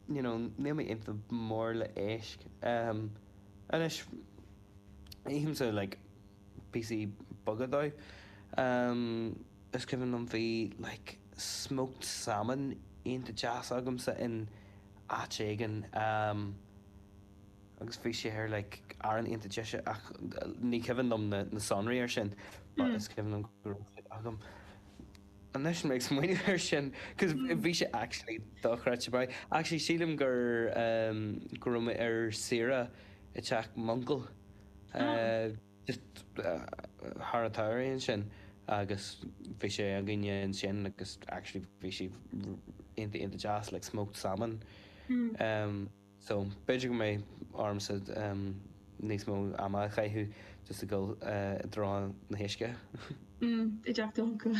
you know níl mé iontach mór le éisc ehm anois ithimse like píosaí beaga dóibh ehm is cuimhin liom bhí like smoked salmon iontach deas agamsa in áit éigin ehm agus bhí sé ar like arán iontach deise ach ní cuimhin liom na sonraí ar sin but is cuimhin liom go raibh siad agam. Anois mé ag smaoineamh air sin, cos bhí sé actually dochreidte maith. Actually sílim gur ehm go raibh mé ar saoire i dteach m'uncail eh just thar an tsamhraidh ansin agus bhí sé againne ansin agus actually bhí sé iontach iontach deas like smoked salmon ehm. So, b'fhéidir go mbeidh ormsa níos mó ama a chaitheamh just ag dul i dtreo na huisce. Mm, i dteach d'uncail.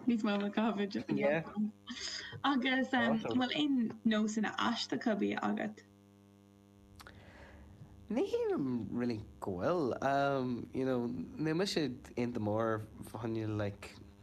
Níos mó ama a chaitheamh i dteach m'uncail. Agus, em, an bhfuil aon nósanna aisteacha bídh agat? Ní shílim really go bhfuil. Em, you know, níl mise iontach mór fá choinne like.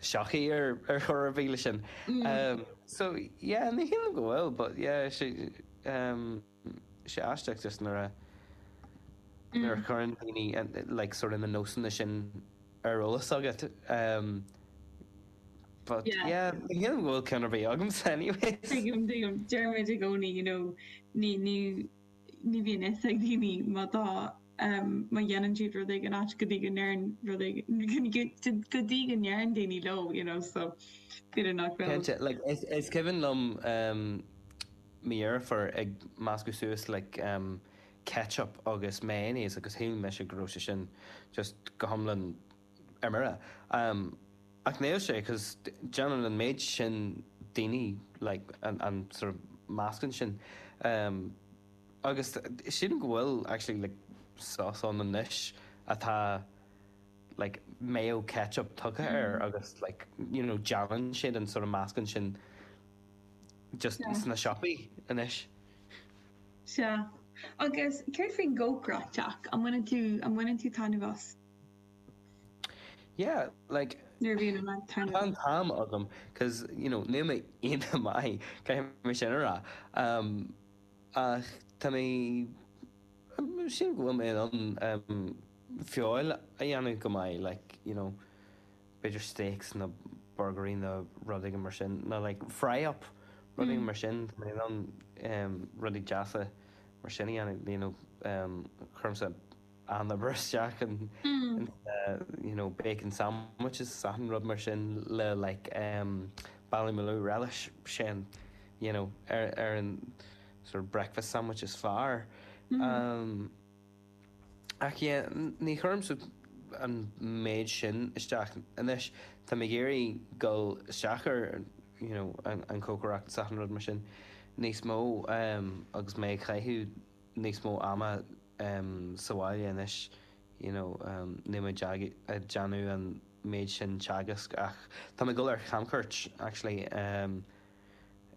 shochaí ar chor ar bith le sin. So yeah, ní shílim go bhfuil but yeah, sé aisteach just nuair a nuair a chuireann daoine like sort of na nósanna sin ar eolas agat but yeah, ní shílim go bhfuil ceann ar bith agamsa anyways. Tuigim, tuigim. Deirim i gcónaí you know, ní, ní, ní bhíonn fhios ag daoine má tá, má dhéanann siad rud éigin ait go dtí go ndeireann rud éigin, go dtí go ndeireann daoine leo you know so b'fhéidir nach raibh. Cinnte, like is is cuimhin liom mo dheirfiúr ag meascadh suas like ketchup agus mayonnaise agus shíl mise go raibh sé sin just go hiomlán ar mire, ach níl sé, cos déanann an méid sin daoine like an sort of meascán sin agus sílim go bhfuil actually like sauce ann anois atá like mayo ketchup tugtha air agus like you know déanann siad an sort of meascán sin just sna siopaí anois. Sea, agus céard faoin gcócaireacht, Jack, an mbaineann tú taitneamh as? Yeah, like, Nuair a bhíonn an t-am agam, 'cause, you know, níl mé iontach maith, caithfidh mé sin a rá, um, ach tá mé, um, sílim go bhfuil mé in ann, um, feoil a dhéanamh go maith, like, you know, b'fhéidir steaks nó burgairí nó rud éigin mar sin, nó like fry up, rud éigin mar sin, tá mé in ann, um, rudaí deasa mar sin a dhéanamh, you know, um, chuir mé. an obair isteach in sna you know bacon sandwiches is achan rud mar sin le like em ballymaloe relish sin you know ar ar an sort of breakfast sandwich is fearr em ach yeah ní chuirim an méid sin isteach anois tá mé ag iarraidh dul isteach ar you know an an cócaireacht is achan rud mar sin níos mó em agus mé ag caitheamh níos mó ama em, sa bhaile anois, you know, em, níl mé ag déanamh an méid sin teagasc ach tá mé ag dul ar chamchuairt, actually, em,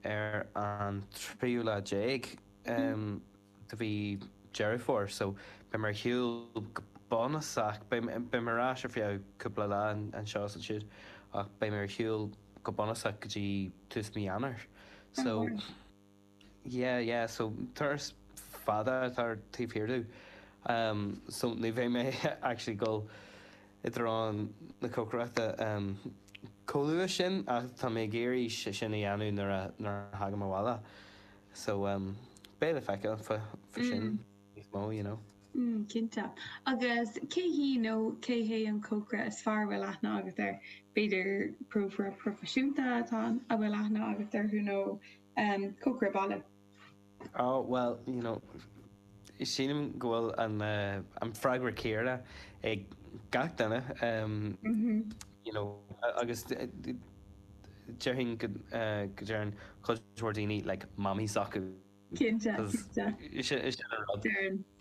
ar an tríú lá déag, em, de mhí Dheireadh Fómhair, so, beidh mé ar shiúl go bunúsach, beidh mé ar ais ar feadh cúpla lá anseo is ansiúd ach beidh mé ar shiúl go bunúsach go dtí tús mí Eanáir, so. Yeah, yeah, so turas fada atá i ndán domh, so ní bheidh mé actually dul i dtreo na cócaireachta chomh luath sin ach tá mé ag iarraidh sin a dhéanamh nuair a thagaim abhaile so beidh le feiceáil fá sin níos mó, you know. Mm, cinnte. Agus cé hí nó cé hé an cócaire is fearr a bhfuil aithne agat air? B'fhéidir cócaire proifisiúnta atá, a bhfuil aithne agat orthu nó um cócaire baile. Ó, bhuel, you know, sílim go bhfuil an freagra céarna ag gach duine, um you know, agus déarfainn go deireann cuid mhór daoine like Mammy s'acu.